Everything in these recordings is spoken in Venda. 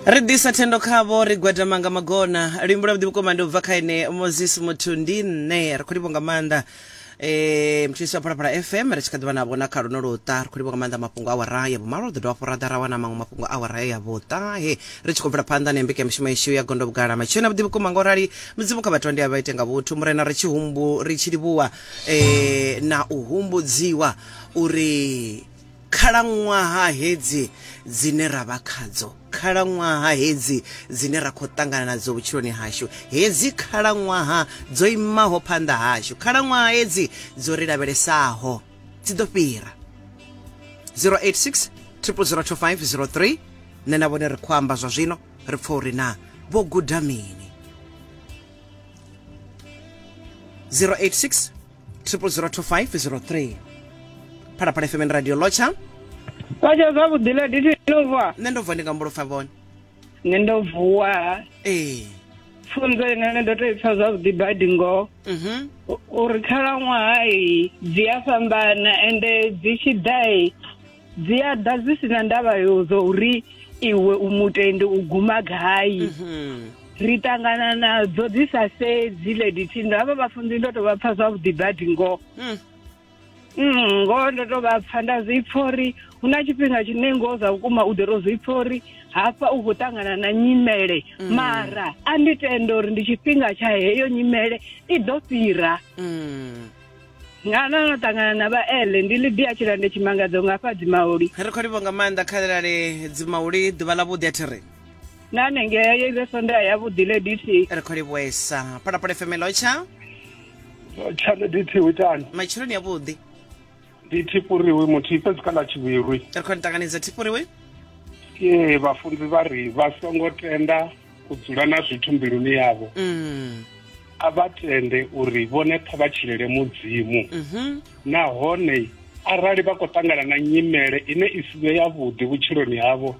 ri ḓisa thendo khavho ri gwadama nga magona luimbo lwa vhuḓi vhukuma ndi u bva kha ene moses muthu ndi nṋe ri khou livho nga maanḓa eh mthulisi wa phalaphala fm ri tshi kha ḓivha na vhona kha luno luṱa ri khou livho nga maanḓa mafhungo a wara ya vhumalo ri ḓo dovha fhora ḓa ra wana maṅwe mafhungo a wara ya vhuṱahe ri tshi khou bvela phanḓa na ya mbekanyamushumo yashu ya gondo vhugala matshena vhuḓi vhukuma nga u rali mudzimu kha vhathu ndi a vha ite nga vhuthu murena ri tshi humbu ri tshi livhuwa eh na u humbudziwa uri Khalaṅwaha hedzi dzine ra vha khadzo, khalaṅwaha hedzi dzine ra khou ṱangana nadzo vhutshiloni hashu, hedzi khalaṅwaha dzo imaho phanḓa hashu, khalaṅwaha hedzi dzo ri lavhelesaho dzi ḓo fhira. 086 002503 Nṋe na vhone ri khou amba zwa zwino, ri pfa uri na vho guda mini. 086 triple zero two five zero three phalaphala fmn radio lotsha kwatsha zwavhuḓi la diti no vuwa nṋe ndo vuwa ndi nga mbulofha vhone nṋe ndo vuwa ee pfunzo inene ndo tou ipfa zwavhuḓi badi ngoho mhm uri khalaṅwaha i dzi a fhambana ende dzi tshi ḓa i dzi a ḓa zwi sina ndavha yo zwa uri iwe u mutende u guma gai Mhm. ri ṱangana nadzo dzi sa sedzi lady tindo havha vhafunzi ndo to vha pfa zwavhuḓi badi ngoho Mm. Mm, ngoho ndo to vha pfa nda zwi pfa uri hu na tshifhinga tshine ngoho zwa vhukuma u ḓo to zwi pfa uri hafha u khou ṱangana na nyimele mara a ndi tenda uri ndi tshifhinga tsha heyo nyimele i ḓo fhira Mm. nga na no ṱangana na vhaele ndi lidia tshilande tshimangadzo nga fha dzimauli ri khou livho nga maanḓa khalelale dzimauli ḓuvha ḽa vhuḓi a thi ri na nengea ye ive sonda ya vhuḓi le dt ri khou livhuesa phalaphala fm lotsha tshale dt u itani matshiloni avhuḓi ndi thipuriwi muthihi fhedzi kha ḽa tshivhirwi ri khou ni ṱanganedza thipuriwi ee vhafunzi vha ri vha songo tenda u dzula na zwithu mbiluni yavho mm. a vha tende uri vhone pfa vha tshilele mudzimu mhm. nahone arali vha khou ṱangana na nyimele ine i si vhe yavhuḓi vhutshiloni havho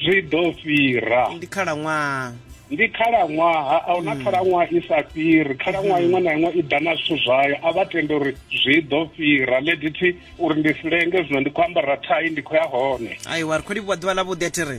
zwi ḓo fhira ndi khalaṅwaha ndi khalaṅwaha a huna mm. khalaṅwaha i sa fhiri khalaṅwaha mm-hmm. iṅwe na iṅwe i ḓa na zwithu zwayo a vha tende uri zwi ḓo fhira ledithi uri ndi si lenge zwino ndi khou ambara thai ndi khou ya hone aiwa ri khou livhuwa ḓuvha ḽa vhuḓi a thi ri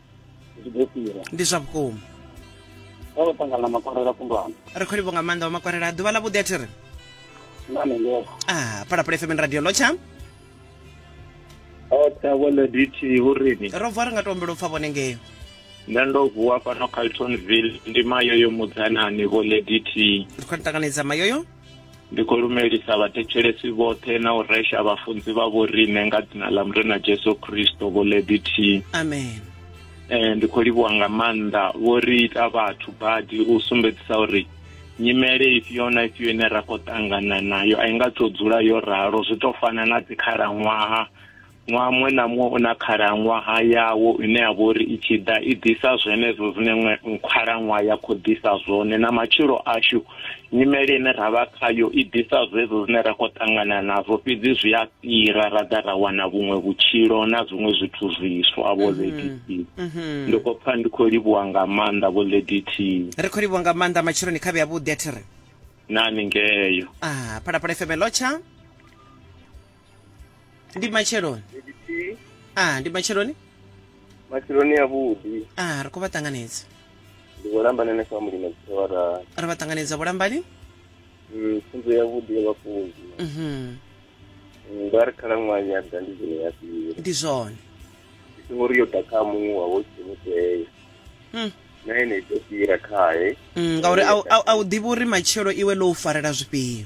zwi ḓo fhira ndi zwa vhukuma vha vho ṱangana na makwarela kundwana ri khou livho nga maanḓa wa makwarela a ḓuvha ḽa vhuḓi a thi ri ah phalaphala fm radio lotsha otsha vhone dithi hu rini ro vuwa ri nga to ombela u pfa vhone ngeyo nṋe ndo vuwa fhano caltonville ndi mayoyo mudzanani vho lady t ri khou ri ṱanganedza mayoyo ndi khou lumelisa vhathetshelesi vhoṱhe na u resha vhafunzi vha vho riṋe nga dzina ḽa murena jesu kristo vho ledithihi amen eh, ndi khou livhuwa nga maanḓa vho ri ita vhathu badi u sumbedzisa uri nyimele ifhio na ifhio ine ra khou ṱangana nayo a i nga tou dzula yo ralo zwi tou fana na dzikhalaṅwaha ṅwaha muṅwe na muṅwe u na khalaṅwaha yawo ine ya vha uri i tshi ḓa i ḓisa zwenezwo zwine ṅwe khalaṅwaha ya khou ḓisa zwone na matshilo ashu nyimele ine ra vha khayo i ḓisa zwezwo zwine ra khou ṱangana nazwo fhedzi zwi a fhira ra ḓa ra wana vhuṅwe vhutshilo na zwiṅwe zwithu zwiswa vho mhm, lady t mhm. ndi khou pfa ndi khou livhuwa nga maanḓa vho lady t ri khou livhuwa nga maanḓa matsheloni khavhe yavhuḓi a thi ri nani ngeyo a ah, phalaphala fm lotsha ndi matsheloni nditi a ndi matsheloni matsheloni avhuḓi a ri khou vha ṱanganedza ndi khou lambana na family na dzithewara ri vha ṱanganedza vhulambani Mm, pfunzo yavhuḓi ya vhafunzi Mhm. Mm, vha ri khalaṅwaha ya ḓa ndi zwino ya fhira ndi zwone ndi songo ri yo ḓa kha muṅwe wa wo tshimutea Mm. na ene i ḓo fhira khae Mm, ngauri a u- a u- a u ḓivhi uri matshelo iwe ḽo u farela zwifhio